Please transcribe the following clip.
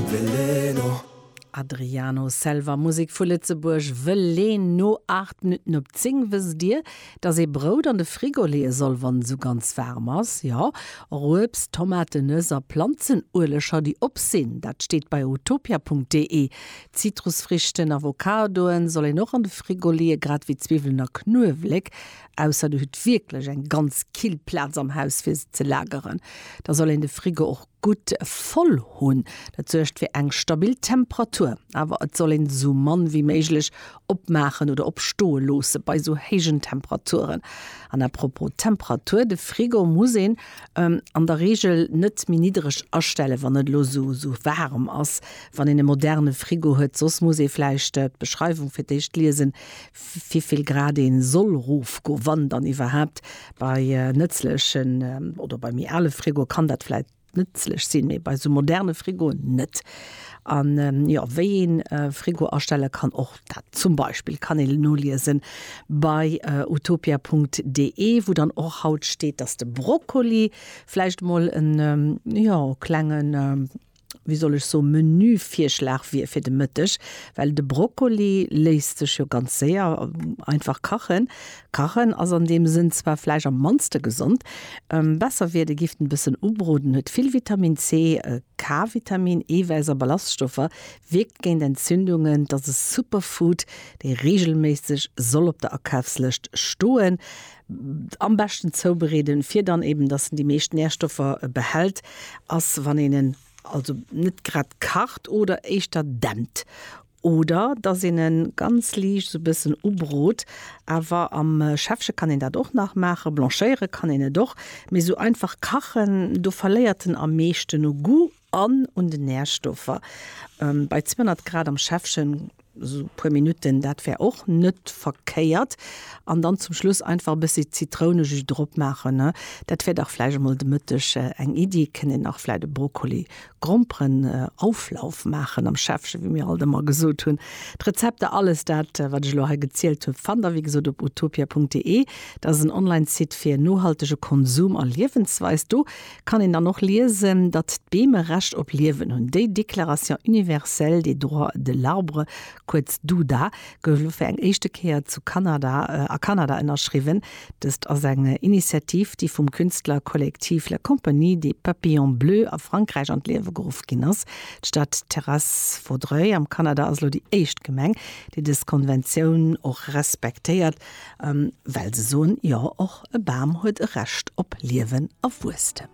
Veleno. Adriano Selva, Musek vu Lëtzebuerg, Veleno. 8 Minutten op 10. Wësst Dir, dass ee Brout an de Frigo leeë soll, wann et esou ganz waarm ass? Jo, och Uebst, Tomaten, Nëss a Planzenueleger, déi op sinn. Dat steet bei utopia.de. Zitrusfrichten, Avocadoen, soll een och an de Frigo leeë, grad ewéi Zwiwwelen a Knuewelek. Ausser Dir hutt wierklech eng ganz kill Plaz am Haus, fir se ze lageren. Da soll een de Frigo och Gutt voll hunn. Dat suergt fir eng stabil Temperatur, awer et soll een esou mann wéi méiglech opmaachen oder op stoe loosse bei esou héijen Temperaturen. An à propos Temperatur, de Frigo muss een an der Reegel net méi niddereg astellen, wann et elo esou waarem ass, wann een e moderne Frigo huet. Soss muss ee vläicht d'Beschreiwung fir d'éischt liesen, wivill Grad ee soll rofgoen, wann dann iwwerhaapt, Bei nëtzlechen oder bei méi ale Frigoe kann dat vläit nëtzlech sinn, mee bei esou moderne Frigoen net. An jo, wéi een e Frigo astelle kann, och dat zum Beispill kann een noliesen bei utopia Punkt de, wou dann och haut steet, dass de Brokkoli vläicht emol en, jo, klengen, wéi soll ech soen, Menüvirschlag wier fir de Mëtteg, well de Brokkoli léisst sech jo ganz séier einfach kachen. Kachen ass an deem Sënn zwar vläicht am mannste gesond. Besser wier, de gifft en e bëssen ubroden. Huet vill Vitamin C, K-Vitamin, Eewäiss a Ballaststoffer, wierkt géint Entzündungen. Et ass e Superfood, dee reegelméisseg soll op der Akafslëscht stoen. Am beschten zoubereeden, fir dann eben, dass en déi meescht Nährstoffer behält, ass wann een en also net grad kacht oder éischter dämpt oder dass een en ganz liicht esou e bëssen ubrot. Awer am Schäffche kann een dat och nach maachen, blanchéiere kann een et och, mee esou einfach kachen, do verléiert en am meeschten u Goût. An un den Nährstoffer, bei 200 Grad am Schäffchen sou puer Minutten, dat wär och net verkéiert. An dann zum Schluss einfach e bëssi Zitrounejus drop maachen. Dat wär dach vläicht emol de Mëtteg eng Iddi. Kënnt een nach vläicht e Brokkoli-Gromperen-Auflauf maachen am Schäffchen, wéi mir alt ëmmer gesot hunn. D'Rezepter, alles dat wat ech elo hei gezielt hunn, fannt der wéi gesot op utopia.de. Dat ass en Online-Site fir nohaltege Konsum a Liewensweis. Do kann een dann och liesen, datt d'Beem e Recht op Liewen hunn. Déi Déclaration universelle des droits de l'arbre, kuerz DUDA, gouf elo fir eng éischte Kéier zu Kanada, a Kanada ënnerschriwwen. Dëst ass eng Initiativ, déi vum Künstlerkollektiv La Compagnie des Papillons Bleus a Frankräich an d'Liewe geruff ginn ass. D'Stad Terrasse-Vaudreuil am Kanada ass elo déi éischt Gemeng, déi dës Konventioun och respektéiert, well se soen, Jo, och E Bam huet e Recht op Liewen a Wuesstem.